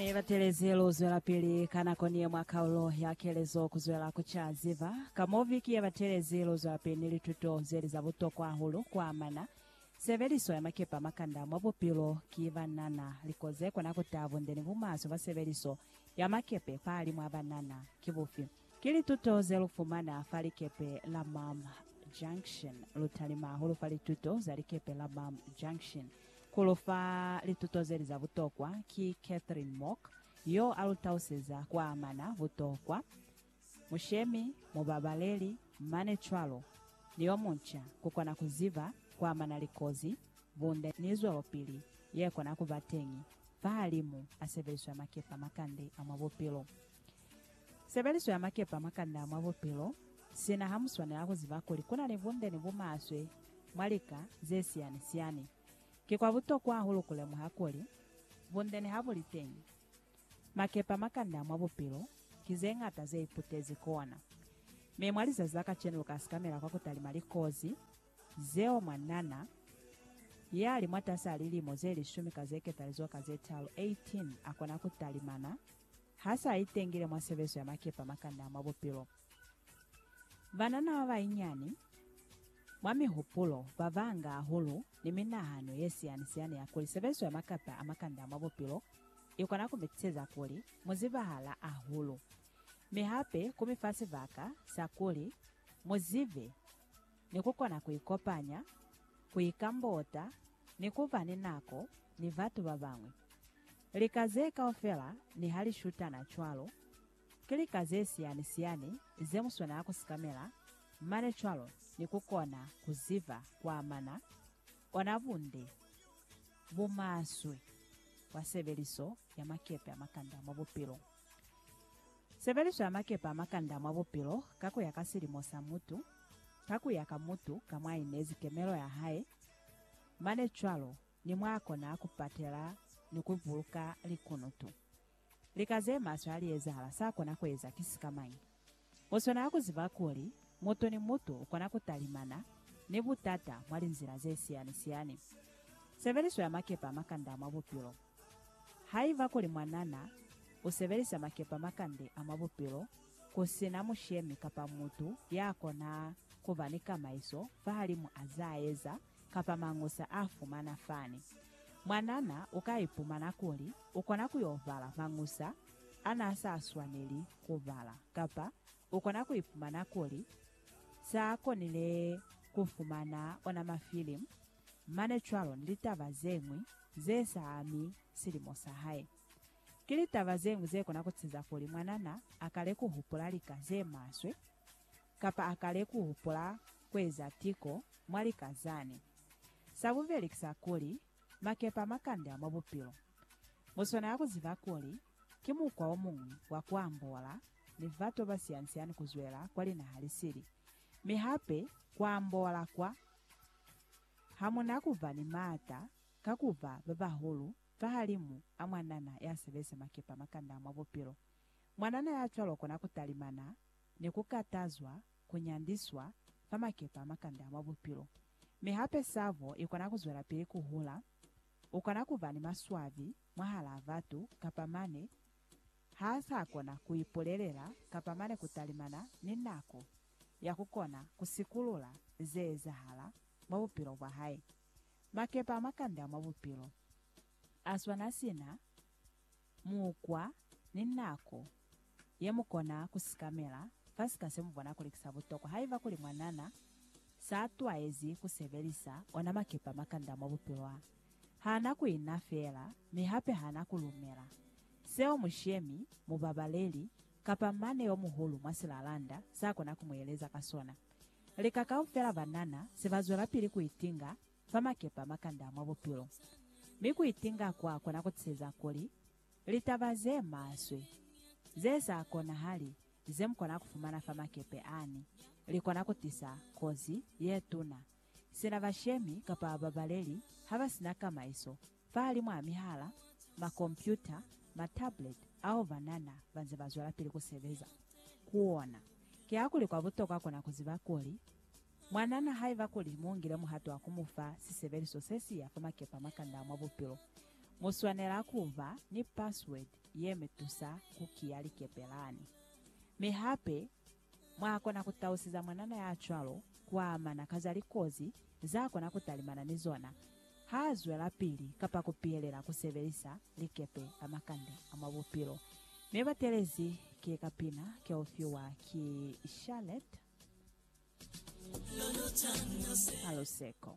Ee, batelezi lu zwelapili ka nako ni ye mwa kaulo ya kelezo ku zwela ku ca ziba ka mo viki ye batelezi. Lu zwelapili ni lituto ze li za butokwa hahulu ku amana sebeliso ya makepe a makanda mwa bupilo. Ki banana, liko ze kona ku taha bunde ni bumaswe bwa sebeliso ya makepe fahalimw'a banana ki bufi? Ki lituto ze lu fumana fa likepe la Mam Junction. Lu talima hahulu fa lituto za likepe la Mam Junction. Ku lu fa lituto ze li za butokwa ki Catherine Mock, yo a lu tauseza kwa amana butokwa, mushemi, mubabaleli, mane cwalo, ni yo munca, ku kona ku ziba kwa amana likozi, bunde, ni zwelopili ye kona ku ba teñi fahalimu a sebeliswa makepe a makande a mwa bupilo. Sebeliso ya makepa mwa kanda mwa bupilo, sina ha mu swanela ku ziba kuli ku na ni bunde ni bumaswe mwa lika ze siyani-siyani. Ki kwa butokwa hahulu ku lemuha kuli, bunde niha bu li teñi, makepa mwa kanda mwa bupilo ki ze ñata ze iputezi kona. Mi mwa lizazi la kacenu lu ka sikamela kwa ku talima likozi zeo mwanana ya li mwatasi a lilimo ze lishumi ka ze ketalizoka ze talu, 18, a kona ku talimana Ha sa itengile mwa sebezo ya makepa makanda mwa bupilo. Banana ba bainyani, mwa mihupulo, ba banga hahulu, ni minahano ye siyani-siyani ya kuli sebezo ya makepa a makanda mwa bupilo i kona ku mi tiseza kuli mu zibahala hahulu, mi hape ku mi fa sibaka sa kuli mu zibe ni ku kona ku ikopanya, ku ikambota, ni ku ba ni nako ni batu ba bañwi. Lika ze kaufela niha li shutana cwalo, ki lika ze siyani-siyani ze mu swanela ku sikamela mane cwalo ni ku kona ku ziba ku amana ona bunde bo maswe bwa sebeliso ya makepe a makanda mwa bupilo. Sebeliso ya makepe a makanda mwa bupilo ka ku ya ka silimo sa mutu, ka ku ya ka mutu ka mwa inezi kemelo ya hae, Mane cwalo ni mwa kona ku patela ni ku buluka likunutu. Lika ze maswe ha li ezahala, sa kona ku eza ki sika mañi? Mu swanela ku ziba kuli mutu ni mutu u kona ku talimana ni butata mwa linzila ze siyani-siyani. Sebeliso ya makepe a makanda mwa bupilo. Haiba kuli mwanana u sebelisa makepa makande a mwa bupilo ku si na mushemi kapa mutu ya kona ku ba ni kamaiso fahalimu a z'a eza kapa mangusa a fumana fani, mwanana u ka ipumana kuli u kona ku y'o bala mangusa a n'a sa swaneli ku bala kapa u kona ku ipumana kuli s'a konile ku fumana ona mafilimu Mane cwalo ni litaba ze ñwi ze sa ami silimo sa hae. Ki litaba ze ñwi ze kona ku ceza kuli mwanana a kale ku hupula lika ze maswe, kapa a kale ku hupula ku eza tiko mwa lika zani. Sa bubeli ki sa kuli, makepe a makande a mwa bupilo. Mu swanela ku ziba kuli ki mukwa o muñwi wa ku ambola ni batu ba siani-siani ku zwela kwa linaha li sili, mi hape ku ambola kwa Ha mu na ku ba ni maata ka ku ba ba bahulu fahalimu a mwanana ya sebezi makepa makanda mwa bupilo, mwanana ya cwalo u kona ku talimana ni ku katazwa, ku nyandiswa, fa makepa makanda mwa bupilo. Mi hape sabo i kona ku zwelapili ku hula. U kona ku ba ni maswabi mwahalaa batu kapa mane ha sa kona ku ipulelela kapa mane ku talimana ni nako ya ku kona ku sikulula ze ezahala mwa bupilo bwa hae. Makepe a makanda mwa bupilo a swana sina mukwa ni nako ye mu kona ku sikamela fa sika se mu bona kuli ki sa butokwa. Haiba kuli mwanana s'a twaezi ku sebelisa ona makepe a makanda mwa bupilo a, ha na ku ina feela mi hape ha na ku lumela seo mushemi, mubabaleli, kapa mane yo muhulu mwa silalanda sa kona ku mu eleza ka sona. Lika kaufela ba nana se ba zwelapili ku itinga fa makepa makanda mwa bupilo. Mi ku itinga kwa kona ku tiseza kuli litaba ze maswe, ze sa konahali ze mu kona ku fumana fa makepe ani, li kona ku tisa kozi ye tuna sina bashemi kapa babaleli ha ba si na kamaiso. Fahali mwa mihala, makompyuta, matablet ao banana banze bazwelapili kusebeza ku ona, kihakuli kwa butokwa kona kuziba kuli, mwanana haiba kuli muungile muhato wa kumufa sisebeliso sesiya fa makepe a makanda a mwa bupilo, muswanela kuba ni password yemutusa kukiya likepe lani. Mi hape, Mwa kona ku tausiza mwanana ya cwalo ku amana ka za likozi za kona ku talimana ni zona ha zwelapili kapa ku pihelela ku sebelisa likepe la makande a mwa bupilo. Mi batelezi ki kapina ke u fiwa ki Charlotte Haluseko.